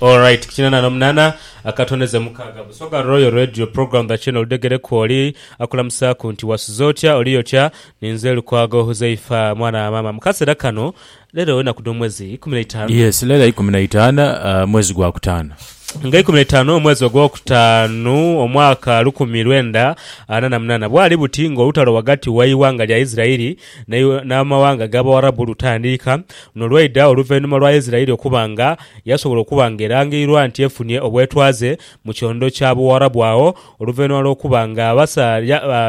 Alright, kinana no munana akatone ze mukaga busoga Royal Radio program the channel degere kwoli akulamusaku nti wasuze otya oli otya ninze Lukwago Huzaifa mwana wa mama mukasera kano lero enaku dho mwezi ikumi na itanu Yes lero ikumi na itano mwezi gwa kutano. Nga ikumi na itanu omwezi ogwo kutanu omwaka lukumi lwenda ana na munana bwali buti nga olutalo wagati wai wanga lya Isirairi Naye n'amawanga g'Abawarabu lutandiika n'olwaidha oluvainhuma lwa Isiraeli okuba nga yasobola okuba nga erangairwa nti efunye obwetwaze mu kyondo kya Buwarabu agho oluvainhuma lw'okuba nga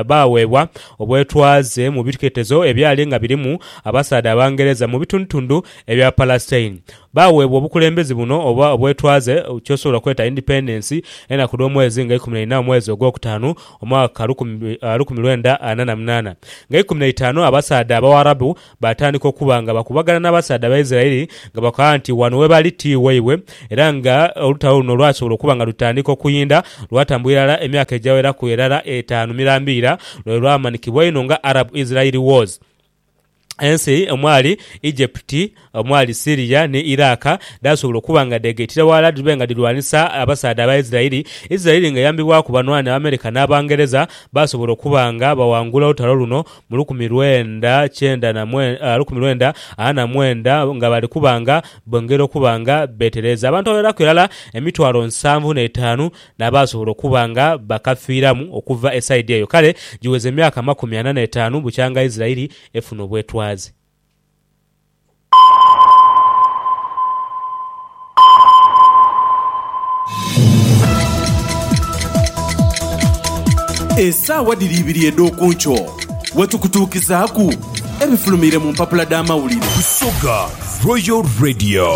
baaweebwa obwetwaze mu biketezo ebyali nga birimu abasaadha Abangereza mu bitundutundu ebya Palestine. Baaweebwa obukulembezi buno oba obwetwaze kyosobola okweta independence enaku dh'omwezi nga ikumi na ina omwezi ogwokutaanu Omwaka lukumi lwenda ana na munaana, nga ikumi na itaanu abasaadha Abawarabu baatandika okuba nga bakubagana n'abasaadha Abaisiraeli nga bakoba nti wano we bali ti waibwe, era nga olutalo luno lwasobola okuba nga lutandika okuyinda lwatambula irala emyaka egyaweraku erala etaanu mirambiira lwe lwamanikibwa einho nga Arab-Israeli Wars. Ensi omwali Egypti, omwali Syria ni Iraq dhaasobola okuba nga dheegaitira ghalala dhibe nga dhirwanisa abasaadha aba Isiraeli. Isiraeli nga eyambibwaku banhwanhi Abamerika n'Abangereza, baasobola okuba nga baghangula olutalo luno mu lukumi lwenda kyenda na mwe, lukumi lwenda ana na mwenda nga bali kuba nga bongera okuba nga beetereeza. Abantu abagheraku irala emitwalo nsanvu n'etaanu n'abaasobola okuba nga bakafiiramu okuva e saidi eyo. Kale giweza emyaka amakumi ana n'etaanu bukyanga Isiraeli efuna obwetwaze. Esaawa dhiri ibiri edh'oku nkyo we tukutuukizaaku ebifulumiire mu mpapula dh'amawulire. Busoga Royal Radio.